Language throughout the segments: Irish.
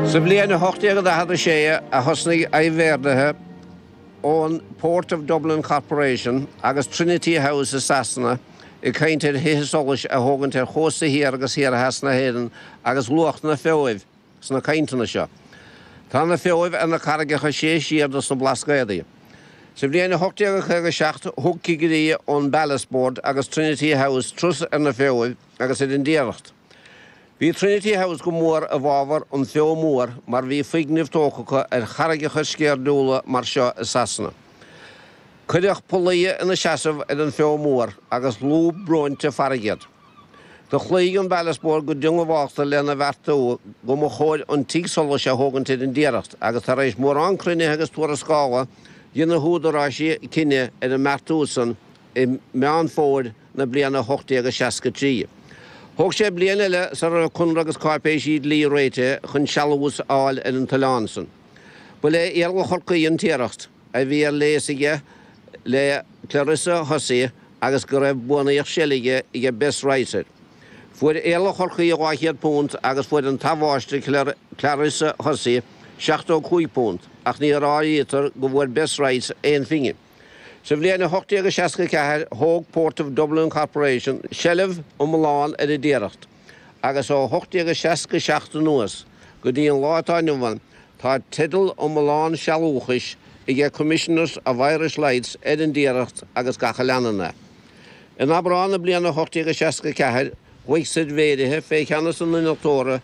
Sa bhliain 1846 a thosnaigh aibhéardaithe ón Port of Dublin Corporation agus Trinity House i Sasana ag caint ar thithe solais a thógaint ar chósta thiar agus thiar theas na hÉireann agus luadh na Feoibh sna cainteanna seo. Tá na Feoibh ar na carraigeacha is sia siar dos na Blascaodaí. Sa bhliain 1857 thug cigirí ón Ballast Board agus Trinity House turas ar na Feoibh agus ar an dTiaracht. Bhí Trinity House go mór i bhfabhar an Fheo Mór mar bhí foirgnimh tógtha acu ar charraigeacha sceirdiúla mar seo i Sasana. Cuireadh pollaí ina seasamh ar an bhFeo Mór agus lúb bróinte farraige iad. Do chloígh an Ballast Board go diongbháilte lena bheartú go mba chóir an tigh solais a thógaint ar an dTiaracht agus tar éis mórán cruinnithe agus tuarascála dhein na húdaráisí cinneadh ar an mbeartú san i Meán Fómhair na bliana 1863. Thóg sé bliain eile sara raibh conradh agus cáipéisí dlí réitithe chun sealús a fháil ar an t-oileán san. Ba le Iarla Chorcaí an Tiaracht a bhí ar léas aige le Clarissa Hussey agus go raibh buannaíocht seilge aige Bess Rice air. Fuair Iarla Chorcaí £200 agus fuair an t-athmháistir Clarissa Hussey £75 ach ní áirítear go bhfuair Bess Rice aon phingin. Sa bhliain 1864, thóg Port of Dublin Corporation seilbh iomlán ar an dTiaracht, agus ó 1867 anuas go dtí an lá atá inniu ann, tá teideal iomlán sealúchais aige Commissioners of Irish Lights ar an dTiaracht agus gach a leanann é. In Aibreán na bliana 1864, ghlaoigh suirbhéirithe fé cheannas an innealtóra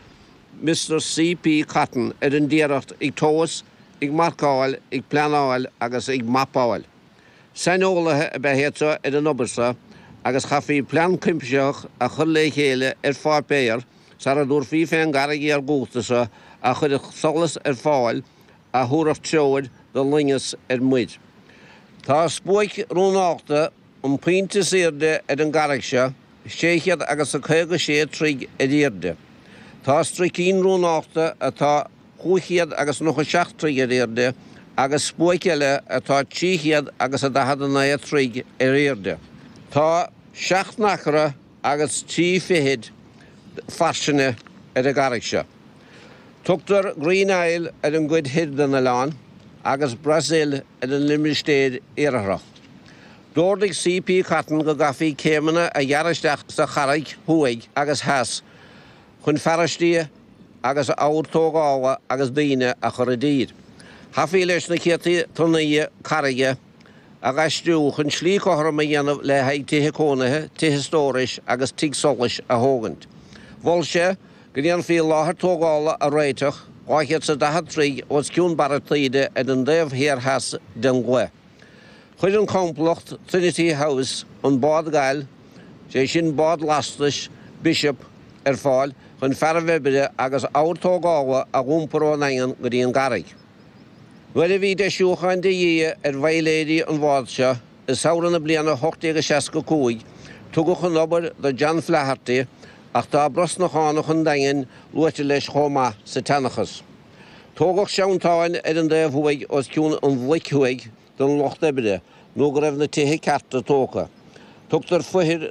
Mr C.P. Cotton ar an dTiaracht ag tomhas ag marcáil, ag pleanáil agus ag mapáil. Saineolaithe ab ea iad seo ar an obair seo agus chaithfí plean cuimsitheach a chur le chéile ar pháipéar sara dtabharfaí fé an gcarraig iargúlta seo a chuirfeadh solas ar fáil a thabharfadh treoir do loingeas ar muir. Tá spuaic rún nochta, an pointe is aoirde ar an gcarraig seo, sé chéad agus a caoga sé troigh ar aoirde. Tá struicín rún nochta atá. 597 troigh ar aoirde agus spuaic eile atá trí chéad agus a daichead a naoi troigh ar aoirde. Tá seacht n-acra agus trí fichid fairsinge ar an gcarraig seo. Tugtar Green Isle ar an gcuid thoir den oileán agus Brazil ar an limistéir iartharach. D'ordaigh C. P. Cotton go gcaithfí céimeanna a ghearradh isteach sa charraig thuaidh agus theas. chun fearaistí agus ábhar tógála agus daoine a chur i dtír. Chaithfí leis na céadta tonnaí carraige a dh'aistriú chun slí cothrom a dhéanamh le haghaidh tithe cónaithe, tithe stórais agus tigh solais a thógaint. Mhol sé go ndéanfaí láthair tógála a réiteach dhá chéad 's a daichead troigh os cionn barra taoide ar an dtaobh thiar theas den gcloich. Chuir an complacht Trinity House an bád gail, is é sin bád lastais Bishop, ar fáil chun fearaibh oibre agus ábhar tógála a dh'iompar ón nDaingean go dtí an gcarraig. Nuair a bhí deisiúcháin de dhíth ar bhaidhléirí an bhád seo i samhradh na bliana 1865, tugadh an obair do John Flaherty, ach tá Brosnachánach an Daingin luaite leis chomh maith sa tseanchas. Tógadh seantáin ar an dtaobh thuaidh os cionn an bhloic thuaidh, don lucht oibre nó go raibh na tithe cearta tógtha. Tugtar foithir